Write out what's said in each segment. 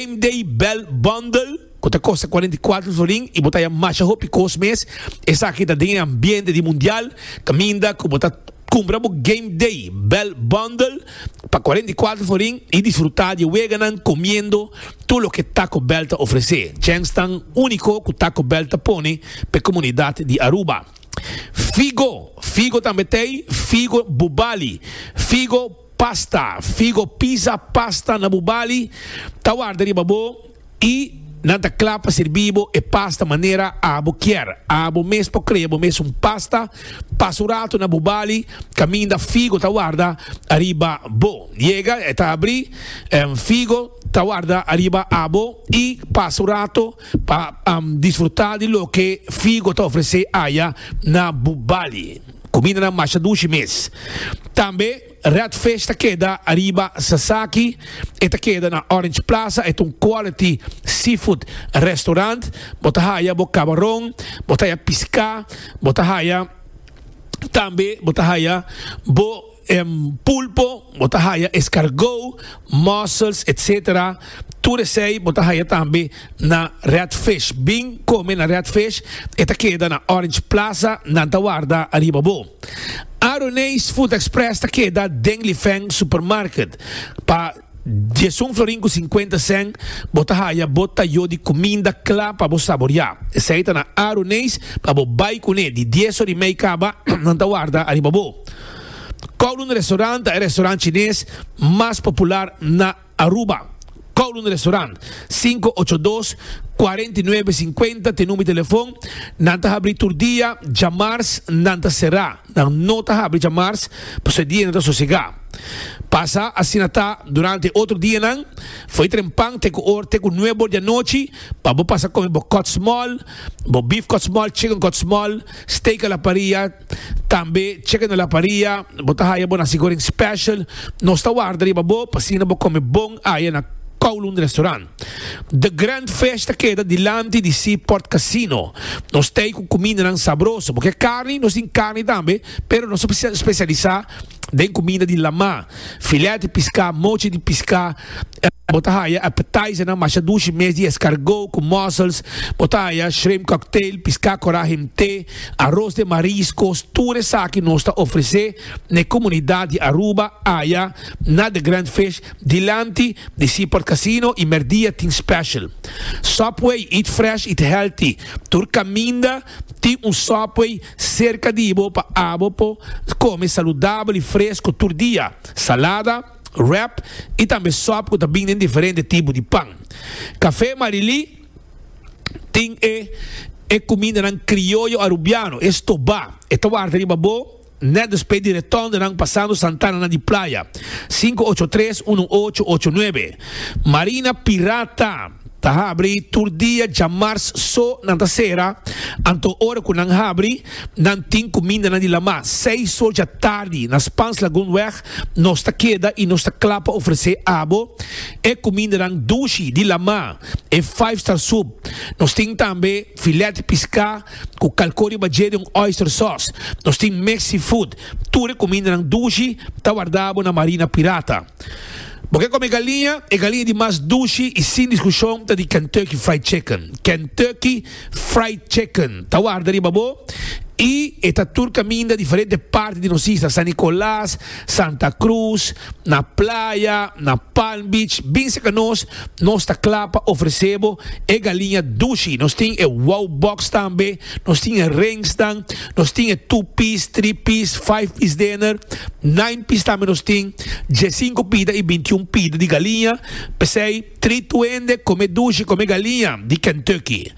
Same Day Bell Bundle, ku ta kosta kuarenta i kuatro florin i bo ta haya masha hopi kos mes. Esaki ta den e ambiente di Mundial, kaminda ku bo ta kumpra bo Game Day Bell Bundle pa kuarenta i kuatro florin i disfrutá di e weganan komiendo tur loke Taco Bell ta ofresé. Chèns tan úniko ku Taco Bell ta pone pa e komunidat di Aruba. Figo Figo tambe t'ei Figo Bubali Figo. Pasta, Figo pisa pasta na bu bali, ta warda riba bo i nan ta kla pa sirbi bo e pasta manera abo kier. Abo mes por krea bo mes un pasta. Pasa un ratu na bu bali kaminda figo ta warda ariba bo. Yega e ta abri, figo ta warda ariba abo i pasa un ratu pa disfruta di loke figo ta ofrese aya na bu bali. Kumindanan masha dushi mes. Tambe Red Fish ta keda ariba Sasaki, e ta keda na Orange Plaza, e ta un quality seafood restaurant. Bo ta haya bo kabaron, bo ta haya piská, bo ta haya tambe bo ta haya bo Pulpo, bo ta haya escargot, mussels, etc. Tur esey bo ta haya tambe na Red Fish. Bin come na Red Fish, e ta keda na Orange Plaza, nan ta warda ariba bo. Aroney's Food Express ta keda den Lifeng Supermarket. Pa. Diesun florin ku sinkuenta sen bo ta haya bo ta yo di kuminda kla pa bo saboriá. Esei ta na aru neis pa bo bai kuné di dies orí mei kaba nan ta warda ariba bo. Kowloon Restaurant ta e restaurant chines mas popular na Aruba. Kowloon Restaurant, sinku ocho dos, kuarenta i nuebe, sinkuenta te number di telefon. Nan ta habrí tur dia, djamars nan ta será. Nan no ta habri djamars, pasobra e dianan ta sosegá. Pasa asina ta durante e otro dianan. Fo'i tren pan te ku or te ku nuebe or di anochi pa bo pasa kome bo kòtsmòl, bo bif kòtsmòl, chicken kòtsmòl, steak a la paria, tambe chicken a la paria. Bo ta haya bo nasi goreng special. Nos ta warda riba bo pa asina bo kome bon aya na Kowloon Restaurant. The Grand Fish ta keda dilanti di Seaport Casino. Nos ta ei ku kumindanan sabroso, bo ke karni? Nos tin karni tambe, pero nos ta spesialisá den kuminda di lamá, filèt di piská, mochi di piská. Bo ta haya appetizernan masha dushi mes di eskargó ku mussels, bo ta haya shrimp cocktail, piská korá himté, aros den mariskos, tur esaki nos ta ofresé na e komunidat di Aruba, aya na The Grand Fish. Dilanti di Seaport Casino y merdia tin special Subway eat fresh eat healthy tur caminda tin un Subway cerca di bo pa abo por come saludabel y fresco tur dia salada wrap y tambe sub cu ta bin den diferente tipo di pan Café Marilí tin e e cumindanan crioyo Arubiano e stoba e ta warda riba bo. Net despues di retorn de nan pasando Santana na di playa, sinku ocho tres unu ocho ocho nuebe, Marina Pirata ta habri tur dia djamars so nan ta sera, anto ora cu nan habri nan tin cuminda nan di lama, seis so dja tardi na Spans Lagoon weg nos ta keda y nos ta cla pa ofrece abo e cumindanan dushi di lama, e five star soup, nos tin tambe filet pisca, cu calco riba dje di un oyster sauce. Nos tin mix seafood. Tur e cumindanan dushi ta wardabo na marina pirata. Bo ke come galiña? E galiña di mas dushi y sin discusion ta di Kentucky Fried Chicken. Kentucky Fried Chicken ta warda riba bo y e ta tur caminda diferente parti di nos isla, San Nicolas, Santa Cruz, na playa, na Palm Beach, bin cerca nos. Nos ta kla pa ofresé bo e galiña dushi. Nos tin e Wow Box tambe, nos tin e ringsnan, nos tin e two piece, three piece, five piece dinner, nine piece tambe nos tin, diesinco pida i bintiun pida di galiña. P'esei treat tu hende, kom'é dushi, kom'é galiña di Kentucky.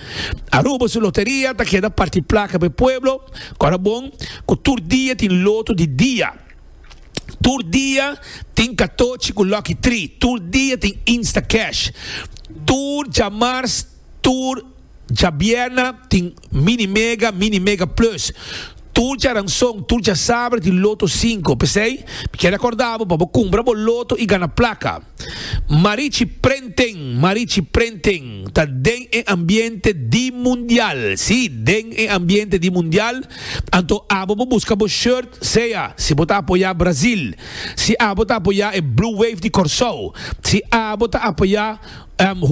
Aruba su loteria ta keda parti plaka p'e pueblo, kòrda bon ku tur dia tin loto di dia. Tur dia tin katochi ku Lucky Tri. Tur dia tin Instacash. Tur djamars, tur djabierna tin Mini Mega, Mini Mega Plus. Tur djaranson, tur djasaber tin Loto Sinku. P'esei, mi kier akorda bo pa bo kumpra bo loto i gana plaka. Marichi Prenten Marichi Prenten ta den e ambiente di mundial, si, den e ambiente di mundial, anto abo bo buska bo shirt sea si bo ta apoya Brazil, si abo ta apoya e Blue Wave di Corsou, si abo ta apoya.